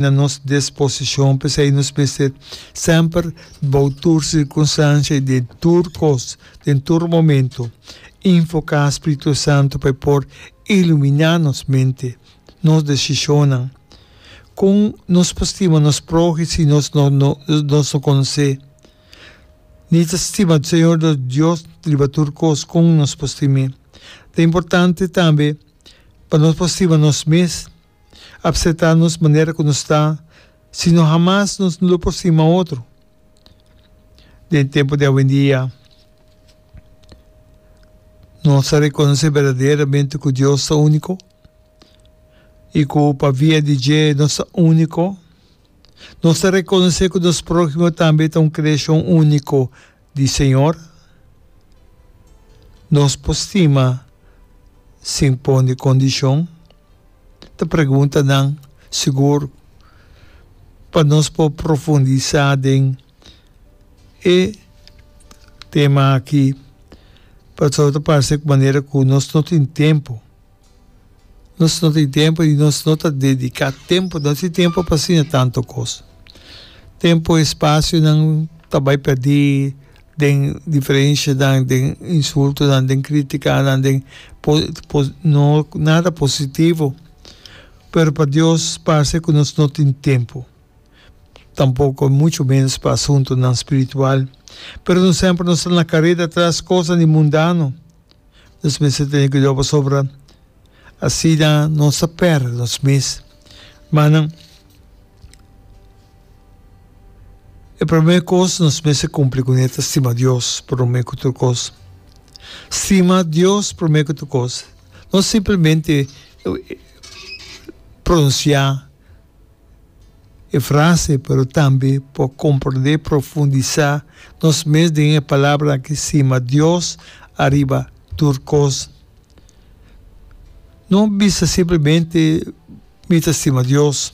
na nos disposicion, p'esei nos mester semper, bou tur circunstancia i den tur cos, den tur momento, invoca Spiritu Santo pa e por ilumina nos mente, nos decisionnan. Con nos por stima nos prohe si nos no nos no conoce? Ni ta stima Señor nos Dios riba tur cos, con nos por stim'e? Ta importante tambe pa nos por stima nos mes. apseptá nos manera ku nos ta, sino hamas nos no lo por stima otro. Den e tempu di awendia, nos a rekonosé berdaderamente ku Dios ta úniko i ku pa via di dje nos ta úniko. Nos ta rekonosé ku nos próhimo tambe ta un kreashon úniko di Señor, nos por stima sin pone condicion, ta preguntanan sigur pa nos por profundisa den e tema aki, pasobra ta parce cu manera cu nos no tin tempo. Nos no tin tempo y nos no ta dedica tempo, no tin tempo pa siña tanto cos. Tempo y espacionan ta bay perdi den diferencianan, den insultonan, den criticanan, den no nada positivo. Pero pa Dios parse cu nos no tin tempo, tampoco mucho menos pa asuntonan spiritual. Pero nos semper nos ta na careda tras cosnan di mundano. nos mes ta tene cuidao pasobra asina nos ta perde nos mes. Manan, e prome cos nos mes ta cumpli cune ta stima Dios prome cu tur cos. Stima Dios prome cu tur cos, no simplemente pronuncia. e frase, pero tambe por comprende, profundisa nos mes den e palabra aki sima Dios ariba tur cos. No bisa simplemente mi ta stima Dios.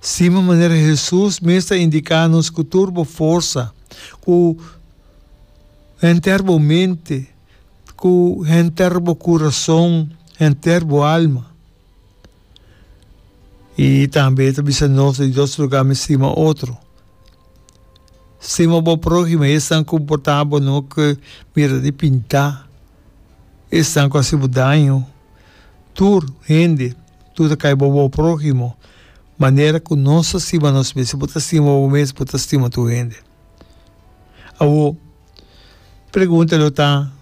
Stima manera Hesus mes ta indica nos cu tur bo forsa, cu henter bo mente, cu henter bo curason, henter bo alma. Y tambe e ta bisa nos di dos lugar mi stima otro. Stima bo próhimo, esnan ku por ta bo no ke mira di pinta, esnan ku a hasi bo daño, tur hende, tur ta kai bo bo próhimo, manera ku nos ta stima nos mes. Si bo ta stima bo mes, bo ta stima tur hende. Awor, pregunta lo ta.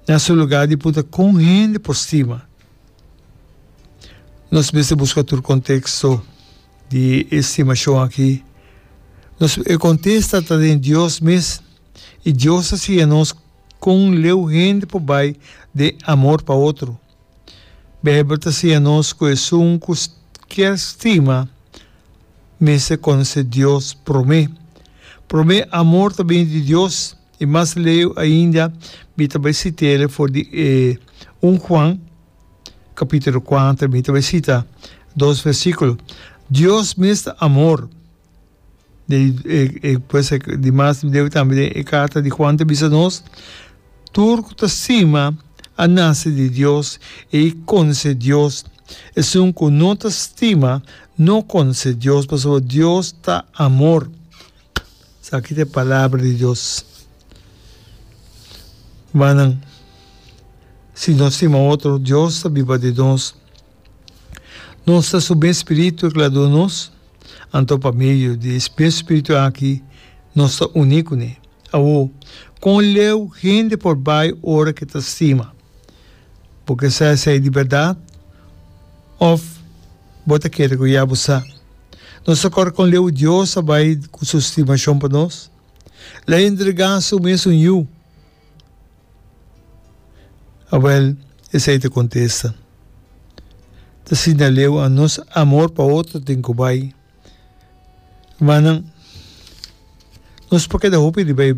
na su lugar di punta kon hende por stima nos mester buska tur konteksto di e stimashon aki. Nos e kontesta ta den Dios mes i Dios a siña nos kon leu hende por bai den amor pa otro. Beibel ta siña nos ku esun ku kier stima mester konosé Dios promé. Promé amor ta bini di Dios I mas leu ainda mi ta bai sit'el for di e un Juan kapitulo kuater, mi ta bai sita dos versíkulo. Dios mes ta amor. Pues e dimas mi debe tambe den e karta di Juan ta bisa nos, tur ku ta stima a nase di Dios i a konose Dios. Esun ku no ta stima no konose Dios, pasobra Dios ta amor. Esaki ta e palabra di Dios. Rumannan, si nos stima otro, Dios ta biba den nos. Nos ta su mes spiritu ku el a duna nos, anto pa medio di e mes spiritu aki nos ta uní kuné. Awor, kon leu hende por bai ora ku e ta stima? Bo ke sa esei di bèrdat òf Bo ta kere ku ya bo sa nos ta kòrda kon leu Dios a bai ku su stimashon pa nos? La e entregá su mes un yu. Awèl, esei ta kontesta, ta siña leu a nos amor pa otro tin ku bai. Manan, nos por keda hopi riba e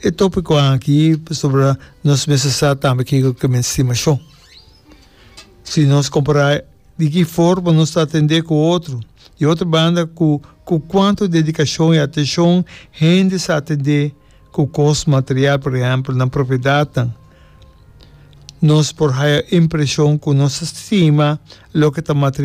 e topico aki pasobra nos mester sa tambe kiko ke men stima shon. Si nos compara di ki forma nos ta atende ku otro, di otro banda ku ku kuantu dedikashon i atenshon hende sa atende ku kos material, por ehèmpel nan propiedatnan, nos por haya impreshon ku nos ta stima loke ta material.